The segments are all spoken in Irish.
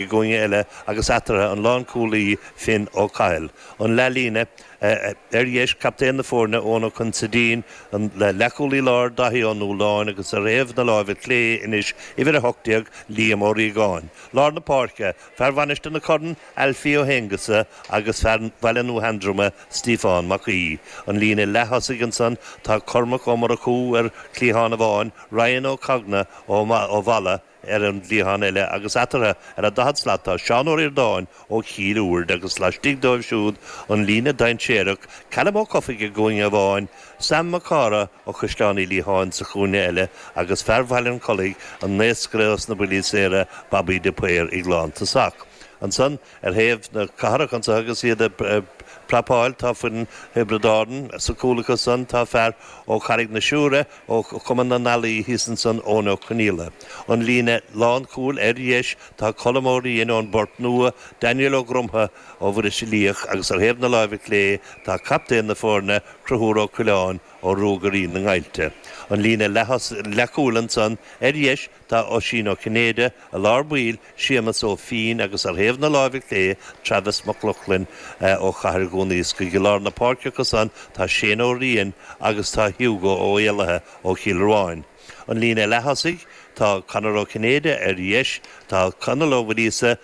i gcúinne eile agus eatarthu an lánchúlaí Finn Ó Cathail, an leathlíne, ar dheis, captaen na foirne Eoghan Ó Consaidín, an leathchúlaí láir Daithí Ó Nualláin agus ar thaobh na láimhe clé anois, uimhir 18, Liam Ó Riagáin. Lár na páirce, fear Mhainistir na Corann, Alfie Ó hAonghusa agus fear Bhaile Nua Sheandroma, Stiofán Mac Aoidh. An líne leath-thosaigh ansan, tá Cormac Ó Murchú ar chliathán amháin, Ryan Ó Cagnadh ó Mhala, ar an gcliathán eile agus eatarthu ar an daichead slat tá Seán Ó Ríordáin ó Chill Úird agus laistigh dóibh siúd an líne dainséarach, Calum Ó Cofaigh i gcúinne amháin, Sam Mac Cárthaigh ó Chaisleán Uí Liatháin sa chúinne eile agus fear Bhaile an Chollaigh, an naoscaire sna buillí saora, Babaí de Paor ag lántosach. Ansan Ar thaobh na cathrach anso agus iad ag prapáil tá foireann Thiobraid Árann, sa cúl acusan tá fear ó Charraig na Siúire, ó Chumann na nEalaí thíos ansan, Eoin Ó Conghaile. An líne lánchúil ar dheis tá Colm Ó Riain ón bPort Nua, Daniel Ó Grumtha ó Bhuiríos Uí Luíoch agus ar thaobh na láimhe clé tá captaen na foirne, Conchúr Ó Coileáin ó Ruagairí na nGaibhlte. An líne leathchúil ansan ar dheis Tá Oisín Ó Cinnéide i lár baill, Séamus Ó Finn agus, ar thaobh na láimhe clé, Travis Mac Lochlainn ó Chathair Dhún Iascaigh i lár na páirce acusan tá Shane Ó Riain agus tá Hugo Ó hÉalaithe ó Chill Ruáin. An líne leath-thosaigh, tá Conor Ó Cinnéide ar dheis, tá Conall Ó Muiríosa,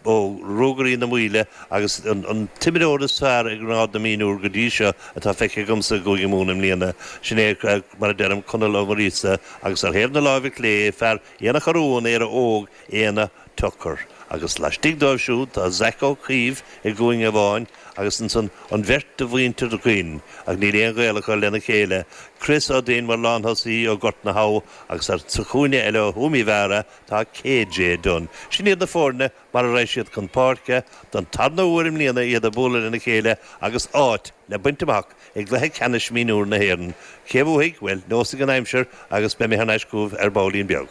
ó Ruagairí na Maoile, agus an t-imreoir is fearr i ngrád na mionúr go dtí seo atá feicthe agamsa i gCúige Mumhan i mbliana, sin é, mar a deirim, Conall Ó Muiríosa, agus ar thaobh na láimhe clé, fear Aonach Urmhumhan, Éire Óg, Éanna Tucker. Agus laistigh dóibh siúd, tá Zach Ó Caoimh i gcúinne amháin, agus ansan an bheirt de mhuintir Dhuinn, ach níl aon ghaol acu lena chéile, Chris Ó Duinn mar lánthosaí ó Gort na hUamha, agus sa chúinne eile ó Thuaim Uí Mheára, Tá KJ Dunne. Sin iad na foirne mar a raghaidh siad chun páirce don tarna huair i mbliana, iad ag bualadh lena chéile agus áit le baint amach i gcluiche ceannais mhionúir na hÉireann. Cé a bhuafaidh? Bhuel, neosfaidh an aimsir agus beidh mé thar n-ais chugaibh ar baillín beag.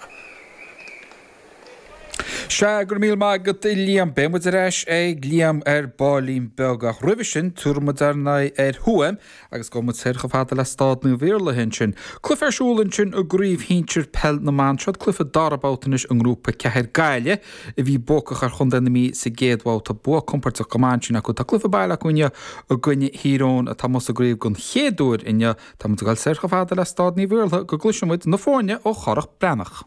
Sea, go raibh míle maith agat a Liam. Beidh muid ar ais ag Liam ar baillín beag ach roimhe sin, tabharfaidh muid ár n-aghaidh ar Thuaim, agus gabhfaidh muid soir chomh fada le Staid Naomh Iarlatha ansin. Cluife ar siúl ansin i gcraobh shinsir peil na mban. Seo cluife dara babhta anois i ngrúpa ceathair Gaillimh a bhí buacach ar chontae na Mí sa gcéad bhabhta. Bua compordach go maith ansin acu. Tá cluife baile acu inniu i gcoinne Thír Eoghain atá amuigh sa gcraobh den chéad uair inniu. Tá muid ag dul soir chomh fada le Staid Naomh Iarlatha go gcloiseann muid na foirne ó Chárthach Breathnach.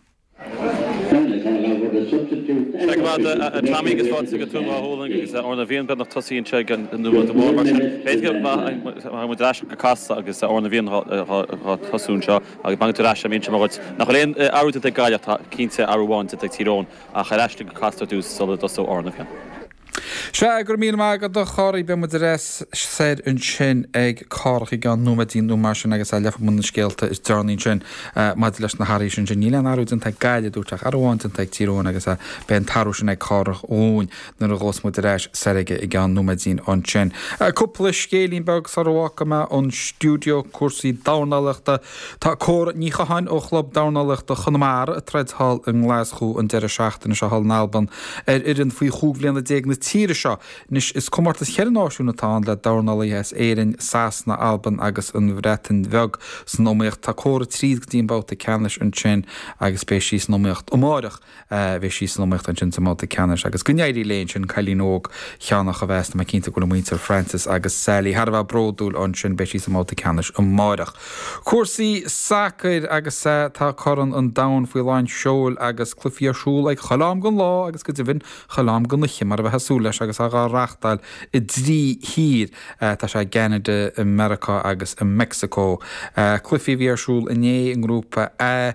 Sea go raibh maith agat a Tommy agus fáilte go Tuaim Dá Ghualann agus Amhrán na bhFiann, beagnach tosaithe anseo nóiméad nó mar sin. B'fhéidir go ngabhfadh muid ar ais go Casla agus Amhrán na bhFiann dhá tosú anseo agus beidh agat ar ais, imíonn sé mo dhuit. Nach bhfuil aon athrú déanta ag Gaillimh, tá cinnte athrú amháin déanta ag Tír Eoghain ach ar ais tú go Casla ar dtús sula dtosóidh Amhrán na bhFiann. Sea, go raibh míle maith agat a Chárthaigh, beidh muid ar ais soir ansin ag Cárthach i gceann nóiméidín nó mar sin agus gheobhaidh muid na scéalta is deireanaí ansin maidir leis na hathruithe sin. Níl aon athrú déanta ag Gaillimh, dúirt, ach athrú amháin déanta ag Tír Eoghain agus beidh an t-athrú sin ag Cárthach dhúinn nuair a ghabhfas muid ar ais soir aige i gceann nóiméidín ansin. Cúpla scéilín beag sara bhfágfaidh mé an stiúideo, cúrsaí dornálaíochta, Tá Córa Ní Chatháin ó Chlub Dornálaíochta Chonamara ag troid thall i nGlaschú an deireadh seachtaine seo thall in Albain ar fhoireann faoi chúig bhliana déag na tíre seo. Anois, is comórtas cheithre náisiún atá ann le dornálaithe as Éirinn, Sasana, Albain agus an Bhreatain Bheag. San iomaíocht, tá Córa tríd go dtí an babhta ceannais ansin agus beidh sí san iomaíocht amárach. bheidh sí san iomaíocht ansin sa mbabhta ceannais agus go n-éirí léi ansin cailín óg cheannach a bheas, tá mé cinnte go bhfuil muintir Francis agus Sally thar a bheith bródúil ansin, beidh sí sa mbabhta ceannais amáireach. Cúrsaí sacair agus tá Corn an Domhain faoi lán seoil agus cluichí ar siúl ag chuile am den lá agus go deimhin chuile am den oíche mar a bheitheá ag súil leis agus á reáchtáil i dtrí thír, tá sé i gCeanada, i Meiriceá agus i Mexico. Cluichí a bhí ar siúl inné i ngrúpa A.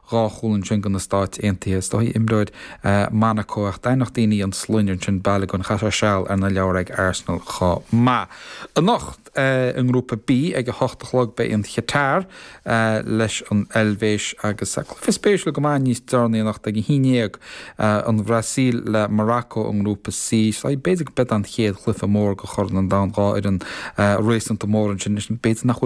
dhá chúl ansin go na Stáit Aontaithe. Is dóigh imreoir Monaco ach d'aithneodh daoine an sloinne ansin, Balogun. Chaith sé seal ar na leabhair ag Arsenal chomh maith. Anocht i nGrúpa B ag a hocht a chlog beidh an Chatar leis an Eilvéis agus cluiche spéisiúil go maith níos deireanaí anocht ag a haon dhéag, an Bhrasaíl le Morocco i nGrúpa C. B'fhéidir gurb eod an chéad chluiche mór de Chorn an Domhain dhá fhoireann réasúnta mór ansin. B'fhéidir nach bhfuil an.